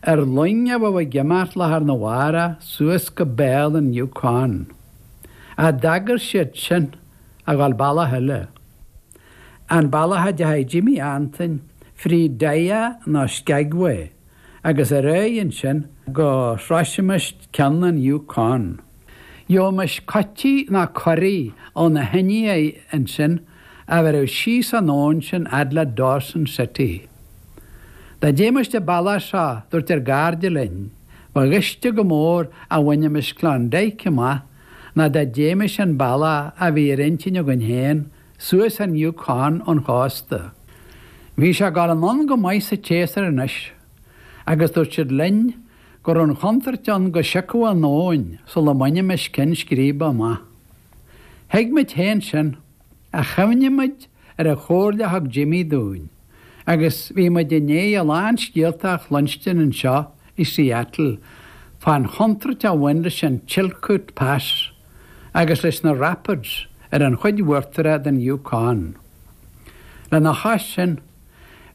Ar loing a bheadh ag imeacht lá arna mhárach suas go béal an Yukon ach d'agair siad sinn, a dhul bealach eile. An bealach a dteachaidh Jimmy Antoin fríd Dyea nó Skagway agus ar aghaidh ansin go sroisimis ceann an Yukon. Gheobhaimis coití nó curaigh ó na hIndiaigh ansin a bhéarfadh síos an abhainn sinn fhad le Dawson City. Dá dtéimis an bealach seo dúirt ár gcairde linn, ba ghaiste go mór a bhainimis Klondike amach ná dá dtéimis an bealach a bhí ar intinn againn féin, suas an Yukon ón chósta. Bhí sé ag dul anonn go maith sa tséasúr anois agus dúirt siad linn go raibh an chontúirt ann go siocfadh an abhainn sula mbainimis cinn scríbe amach. Thuig muid féin sin, ach chuimhnigh muid ar an chomhairle a thug Jimmy dúinn agus bhí muid i ndiaidh a lán scéalta a chluinstin anseo i Seattle fán chontúirt a bhain leis an Chilkoot Pass agus leis na Rapids ar an chuid uachtaraigh den Yukon. Lena chois sin,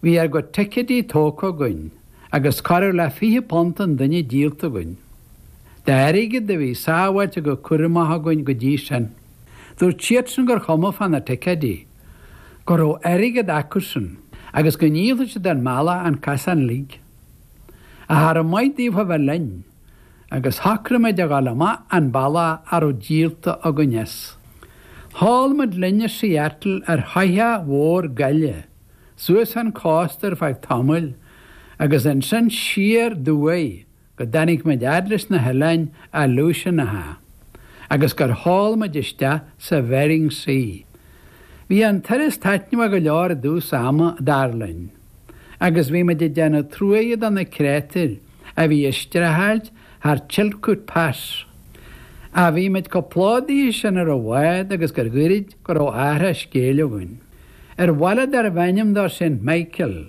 Bhí ár gcuid ticeidí tógtha againn agus corradh le fiche punt an duine díolta againn d'airgead a bhí sábháilte go cúramach againn go dtí sin. Dúirt siadsan gur chuma fá na ticeidí, go raibh airgead acusan agus go ndíolfadh siad ár mbealach an casán uilig. Ach cha raibh maith daofa a bheith linn. agus shocraigh muid a dhul amach an bealach a raibh díolta againn as. Sheol muid linn ó Seattle ar shoitheach mhór gaile suas an cósta ar feadh tamaill agus ansin siar ó thuaidh go dtáinig muid fhad leis na hoileáin Aleutianacha agus gur sheol muid isteach sa Bhering Sea. Bhí an turas taitneamhach go leor i dtús ama, dar linn. agus bhí muid ag déanamh truaighe do na créatúir a bhí ag streachailt thar Chilkoot Pass. Ach bhí muid chomh plódaithe sin ar an bhád agus gur ghairid go raibh athrach scéil againn. Ar bhaile darbh ainm dó Saint Michael,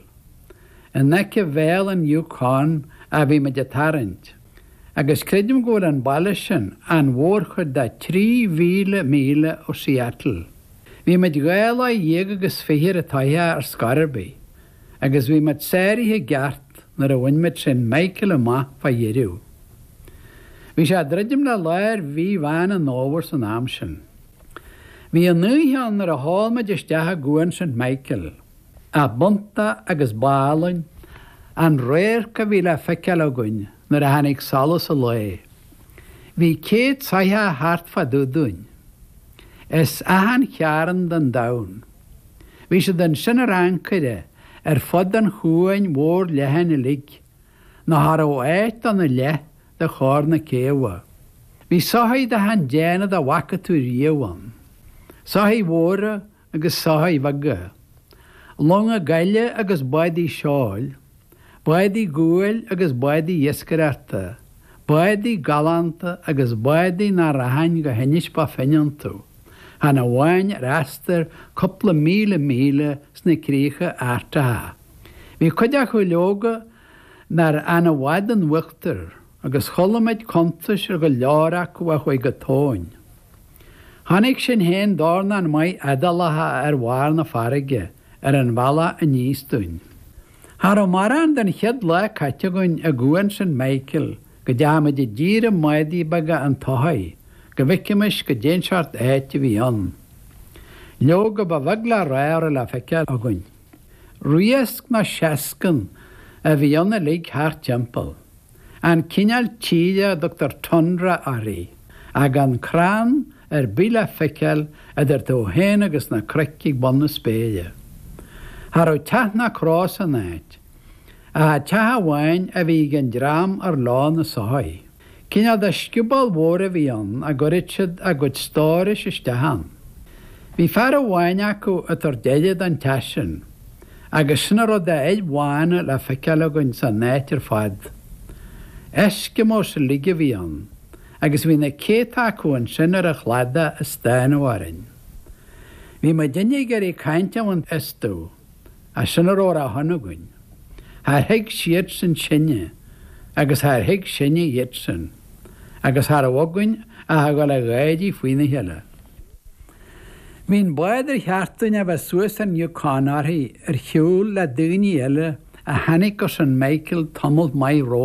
in aice Bhéal an Yukon, a bhí muid ag tarraingt. agus creidim go bhfuil an baile sin an mhórchuid de 3,000 míle ó Seattle. Bhí muid dhá lá dhéag agus fiche ar an tsoitheach ar scor ar bith, agus bhí muid sáraithe i gceart nuair a bhain muid Saint Michael amach fá dheireadh. Bhí sé ag druidim le lár mhí Mheán an Fhómhair san am sin. Bhí an oíche ann nuair a sheol muid isteach i gCuan Saint Michael. A bpunta agus ba álainn an radharc a bhí le feiceáil againn nuair a tháinig solas an lae. Bhí céad soitheach thart fá dtaobh dúinn. As achan chearn den domhan. Bhí siad ansin ar ancaire ar fud an chuain mhóir leathain uilig, nó cha raibh áit dona leath de chóir na céabha. Bhí soithigh d'achan déanamh dá bhfaca tú riamh ann. Soithigh mhóra agus soithigh bheaga, longa gaile agus báidí seoil, báidí guail agus báidí iascaireachta, báidí galánta agus báidí nach rachainn go hInis Bó Finne iontu, chan amháin ar astar cúpla míle míle sna críocha Artacha. Bhí cuid acu, leoga, nár fhan i bhfad in uachtar. Agus chuala muid cuntais ar go leor acu a chuaigh go tóin. Chonaic sinn féin dornán maith éadálacha ar bharr na farraige ar an bhealach aníos dúinn. Cha raibh mórán den chéad lá caite againn i gCuan St. Michael go dteachaidh muid i dtír i mbádaí beaga an tsoithigh go bhfeicimis goidé an seort áit a bhí ann. Leoga ba bheag le rá a raibh le feiceáil againn. Riasc nó seascann a bhí ann uilig thart timpeall. An cineál tíre a dtugtar tundra uirthi, gan crann ar bith le feiceáil idir tú féin agus na cnoic ag bun na spéire. Cha raibh teach ná cró san áit. Ach teach amháin a bhí ag an dream ar leo na soithigh. Cineál de scioból mhór a bhí ann a gcuireadh siad a gcuid stórais isteach ann. Bhí fear amháin acu ag tabhairt aire don teach sin. agus sin a raibh d'fhir bhána le feiceáil againn san áit ar fad. Eskimos uilig a bhí ann, agus bhí na céadta acu ansin ar an chladach ag stánadh orainn. Bhí muid uilig ag iarraidh caint a bhaint astu, ach sin a raibh ar a shon againn. Char thuig siadsan sinne, agus char thuig sinne iadsan. agus cha raibh againn ach a ghabháil a gháirí faoina chéile. Bhí an bád ar cheart dúinn a bheith suas an Yukon uirthi ar shiúl le daoine eile a tháinig go St. Michael tamalt maith romhainn.